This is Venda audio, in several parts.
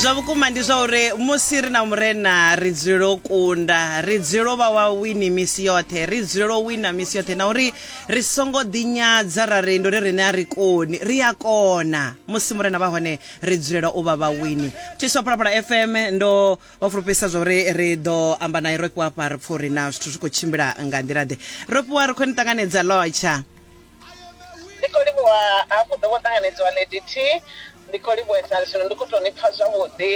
zwa vhukuma ndi zwa uri musi ri na murena ri dzulela u kunda ri dzulela u vha wa wini misi yoṱhe ri dzulela u wina misi yoṱhe na uri ri songo ḓinyadza ra ri ndo ri rine a ri koni ri a kona musi murena vha hone ri dzulela u vha vha wini tshiswa phalaphala fm ndo vha fulufhedzisa zwa uri ri ḓo amba naye ro fhiwa fha ri pfha uri na zwithu zwi khou tshimbila nga nḓila ḓe ro fhiwa ri khou ni ṱanganedza lotsha ndi khou livhuwa hafhu ḓo vho ṱanganedziwa ndt ndi khou livhuwesa zwino ndi khou tou ni pfa zwavhuḓi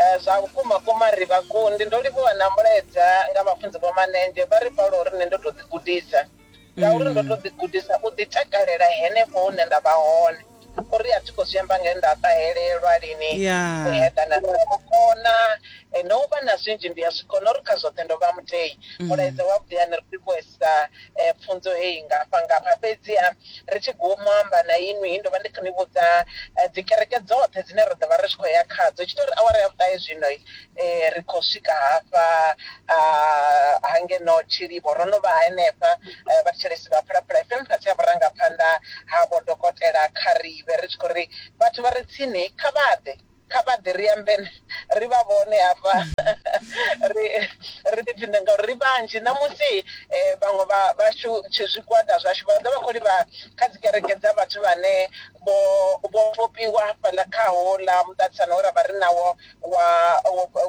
eh, zwa vhukuma kuma ri vhakundi ndo livhuwa na mulaedza nga vhafunzi vho manenzhe vha ri paulo uri nṋe ndo tou ḓigudisa ngauri ndo tou ḓigudisa u ḓitakalela henefho hune nda vha hone O ri, A thi khou zwi amba nge nda ṱahelelwa lini u eḓana na vhukona, na u vha na zwinzhi ndi a zwi kona. O ri, Kha zwoṱhe ndo vha mutei. Mulaedza wavhuḓi a ni ri livhuhesa pfunzo heyi ngafha-ngafha. Fhedzi-ha, ri tshi guma u amba na inwi, ndo vha ndi khou ni vhudza dzikereke dzoṱhe dzine ra ḓo vha ri tshi khou ya khadzo. Hu tshi tou ri awara ya vhuṱahe zwino, eh, ri khou swika hafha ah, ha ngeno tshilivho ro no vha henefha eh, vhathetshelesi vha phalaphala fm fhasi ha vhurangaphanḓa ha vho dokotela kharibe ri tshi khou ri vhathu vha re tsini kha vha ḓe kha vha ḓe ri ambe na- ri vha vhone hafha ri ri ḓipfhinde ngauri ri vhanzhi ṋamusi eh, vhaṅwe vha- vhashu tshi zwigwada zwashu vha ḓo vha khou livha kha dzi kereke dza vhathu vhane vho vho vhofhiwa hafhaḽa kha hola muṱaṱisano we ra vha ri nawo wa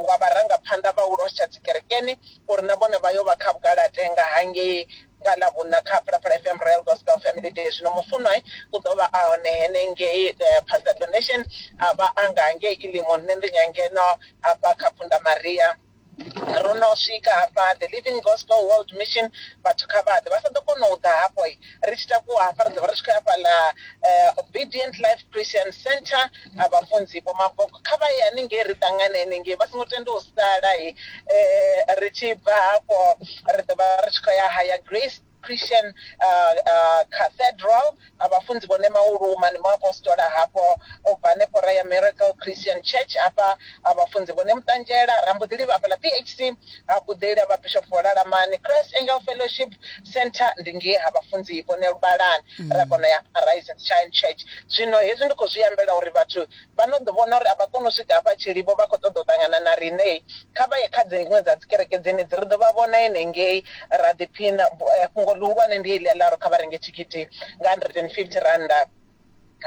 wa vharangaphanḓa vha u losha dzikerekeni uri na vhone vha yo vha kha vhugalatenga hangei nga ḽa vhuna kha phalaphala fm royal gospel family day zwino mufunwa u ḓo vha a hone henengei eh, pastor donation a vha a nga hangei ilimo nṋe ndi nyangeno hafha kha phunda maria ro no swika hafha the living gospel world mission vhathu kha vhaḓe vha sa ḓo kona u ḓa hafho ri tshi takuwa hafha ri ḓovha ri tshi khou ya fhaḽa eh, obedient life christian center vhafunzi vho maboko kha vha ye haningei ri ṱangane haningei vha songo tenda u sala eh, ri tshi bva hafho ri ḓovha ri tshi khou ya haya grace Christian Cathedral, na vhafunzi vhone mauluma, ndi muapostola hafho, o bva hanefho ra ya Miracle Christian Church, hafha ha vhafunzi vhone muṱanzhela, ra mbo ḓi livha hafhaḽa PHC ha Kuḓeli ha Vhabishop vho Lalamani, Christ Angel Fellowship Centre ndi ngei ha vhafunzi vhone Luvhalani, ra kona u ya Arise and Shine Church. Zwino hezwi ndi khou zwi ambela uri vhathu vha no ḓi vhona uri a vha koni u swika hafha Tshilivho, vha khou ṱoḓa u ṱangana na riṋe, kha vha ye kha dziṅwe dza dzikereke dzenedzi, ri ḓo vha vhona henengei ra ḓiphina. Fhungo ḽihulwane ndi heḽi a ḽa uri kha vha renge thikhithi nga R150.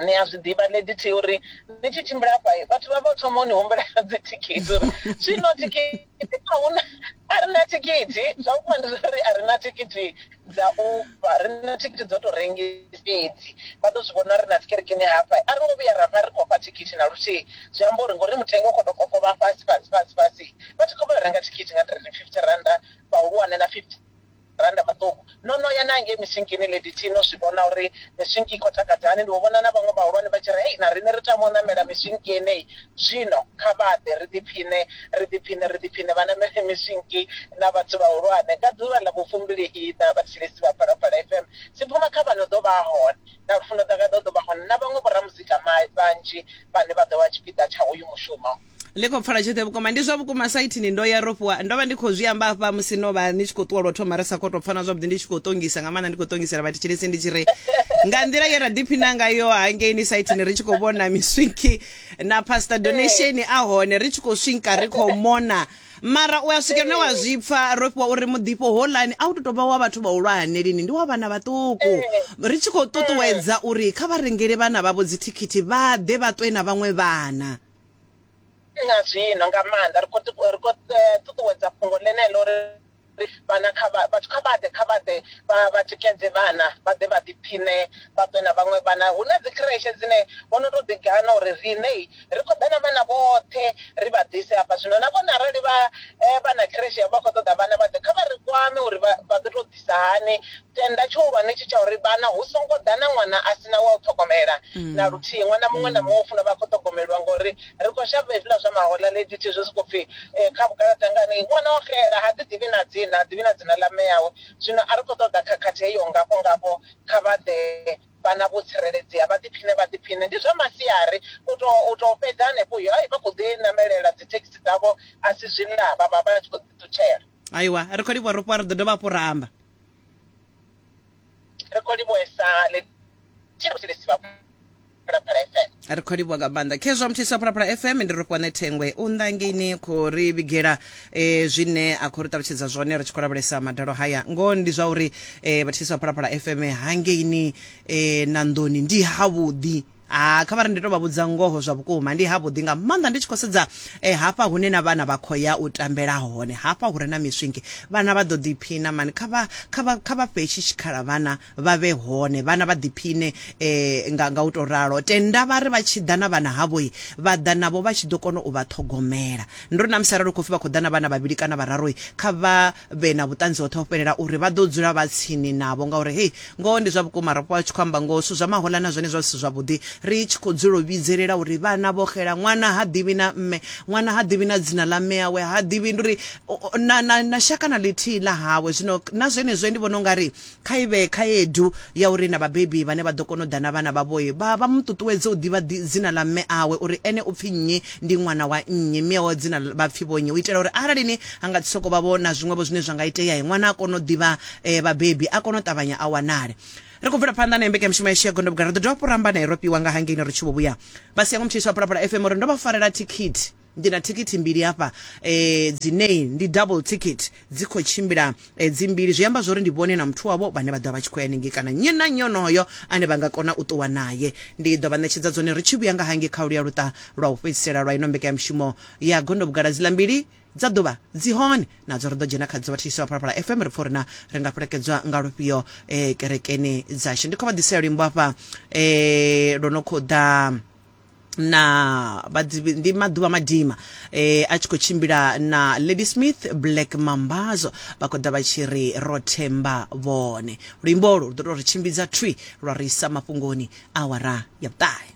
Ni a zwi ḓivha, Lady T u ri, Ni tshi tshimbila hafha, vhathu vha vha vho thoma u ni humbela dzithikhithi, u ri, Zwino thikhithi. ahuna a ri na thikhithi zwa vhukuma ndi zwa uri a ri na thikhithi dza uber ri na thikhithi dzo tou rengisa fhedzi vha ḓo zwi vhona ri na tsikerekeni hafha a ri ngo vhuya ra vha ri khou fha thikhithi na luthihi zwi amba uri ngori mutengo u khou tou kokovha fhasi fhasi fhasi fhasi vha tshi khou vha renga thikhithi nga three fifty randa vhahulwane na fifty rannda maṱuku. No no ya na ngei misinkini lady T no zwi vhona uri misinki i khou takadza hani. Ndi vho vhona na vhaṅwe vhahulwane vha tshi ri, Hei, na riṋe ri tama u ṋamela misinki yeneyi. Zwino kha vha ḓe ri ḓiphiṋe, ri ḓiphiṋe, ri ḓiphiṋe. Vha ṋamele misinki na vhathu vhahulwane. Nga ḓuvha ḽa vhufumbili-iṋa, vhathetshelesi vha Phalaphala FM dzi phuma kha vha no ḓo vha hone. Na Lufuno Ḓagaḓa u ḓo vha hone na vhaṅwe vhoramuzika vhanzhi vhane vha ḓo vha tshipiḓa tsha hoyu mushumo. ḽi khou pfala tshoṱhe vhukuma ndi zwa vhukuma saithini ndo ya ro fhiwa ndo vha ndi khou zwi amba hafha musi no vha ni tshi khou ṱuwa lwo thoma ri sa khou tou pfana zwavhuḓi ndi tshi khou ṱongisa nga maanḓa ndi khou ṱongisela vhathetshelesi ndi tshi ri nga nḓila ye ra ḓiphina ngayo hangeini saithini ri tshi khou vhona miswinki na pastor donation a hone ri tshi khou swinka ri khou mona mara u a swika lune wa zwi pfa ro fhiwa uri muḓifho holani a u to tovha wa vhathu vhahulwane lini ndi wa vhana vhaṱuku ri tshi khou ṱuṱuwedza uri kha vha rengele vhana vhavho dzithikhithi vha ḓe vha ṱwe na vhaṅwe vhana na zwino nga maanḓa ri khou ri khou eh, ṱuṱuwedza fhungo ḽeneḽo ri vhana kha vhathu kha vhaḓe kha vhaḓe vha tikedze vhana vha ḓe vha ḓiphiṋe vha ṱwe na vhaṅwe vhana hu na dzikhireshe dzine vho no tou ḓigana uri riṋe ri khou ḓa na vhana vhoṱhe ri vha ḓise hafha zwino na vhone arali vha eh, vha na khireshe yavho vha khou ṱoḓa vhana vha ḓe kha vha ri kwame uri vha ḓo tou ḓisa hani tenda tshihulwane tshi tsha uri vhana hu songo ḓa na ṅwana a sina wa u ṱhogomela na luthihi ṅwana muṅwe na muṅwe u funa vha khou ṱhogomeliwa ngori ri khou shavha hezwiḽa zwa mahola lady thi zwe soko pfhi eh, kha vhugalaḓa ngani ṅwana o xela ha ḓi ḓivhi na dzina ha ḓivhi na dzina ḽa mme yawe zwino a ri khou ṱoḓa khakhathi heyo ngafho ngafho kha vha ḓe vhana vho tsireledzea vha ḓiphine vha ḓiphine ndi zwa masiari u to u to fhedza hanefho uyo ai vha khou ḓi namelela dzi thekhisi dzavho a si zwiḽa vha vha vha tshi khou ḓi ṱutshela aiwa ri khou livhuwa ro fhiwa ri ḓo dovha hafhu ra amba ri khou livhuesa ni tshiri musi ni si vha phalaphala fm ri khou livhuwa nga maanḓa khezwa muthiso wa phalaphala fm ndi ri fhiwa ne thengwe u nḓangeni khou ri vhigela um zwine a khou ri ṱalutshedza zwone ri tshi khou lavhelesa madalo haya ngoho ndi zwa uri um vhathiso wa phalaphala fm hangeini um na nḓoni ndi havhuḓi Ah, kha vhari ndi to vha vhudza ngoho zwa vhukuma ndi havhuḓi nga maanḓa ndi tshi khou sedza eh, hafha hune na vhana vha khou ya u tambela hone hafha hure na miswingi vhana vha ḓo ḓiphina mani kha vha kha vha kha vha fhe tshi tshikhala vhana vha vhe hone vhana vha ḓiphine eh, nga, nga u to ralo tenda vha ri vha tshi ḓa na vhana havhoi vha ḓa navho vha tshi ḓo kona u vha ṱhogomela ndo ri na musi arali u khou pfi vha khou ḓa na vhana vhavhili kana vhararoi kha vha vhe na vhuṱanzi hoṱhe ho fhelela uri vha ḓo dzula vha tsini navho ngauri hei Ngoho ndi zwa vhukuma, ro vha tshi khou amba ngoho, zwithu zwa mahoḽa na zwone zwa zwi si zwavhuḓi, ri tshi khou dzula u vhidzelela uri vhana vho xela, ṅwana ha ḓivhi na mme, ṅwana ha ḓivhi na dzina ḽa mme awe, ha ḓivhi ndi uri na, na, na shaka na ḽithihi ḽa hawe. Zwino na zwenezwo ndi vhona u nga ri kha i vhe khaedu ya uri na vhabebi vhane vha ḓo kona u ḓa na vhana vhavho, vha, vha mu ṱuṱuwedze u ḓivha dzina ḽa mme awe, uri ene u pfi nnyi, ndi ṅwana wa nnyi, mme awe dzina vha pfi vho nnyi, u itela uri arali ni, ha nga si sokou vha vho na zwiṅwevho zwine zwa nga itea, ṅwana a kone u ḓivha eh, vhabebi a kone u ṱavhanya a wanale ri khou bvela phanḓa na mbekanyamushumo yashu ya gondobuga ri ḓo dovha fhuramba naye ro piwa nga hangeini ri tshi vho vhuya vha siya ngo mutshisi wa pulapula fm uri ndo vha farela thikhithi ndi na thikhithi mbili hafha eh, dzinei ndi double ticket dzi khou tshimbila eh, dzimbili zwi amba zwori ndi vhone na muthu wavho vhane vha ḓovha vha tshi khou ya ningei kana nnyi na nnyi onoyo ane vha nga kona u ṱuwa naye ndi ḓo vha ṋetshedza dzone ri tshi vhuya nga hange kha luya luṱa lwa u fhedzisela lwa ino mbekanyamushumo ya gondobugala dzila mbili dza ḓuvha dzi hone nadzo ri ḓo dzhena khadzo vha thetshelesi vha phalaphala fm ri pfa uri na ri nga fhelekedzwa nga lufhio eh, kerekeni dzashu ndi khou vha ḓisela luimbo hafha eh, lwo no khou ḓa na vhadzivi ndi maḓuvha madima eh, a tshi khou tshimbila na lady smith black mambazo vha khou ḓa vha tshi ri ro themba vhone luimbo olu lu ḓo tou ri tshimbidza thwi lwa ri isa mafhungoni awara ya vhuṱahe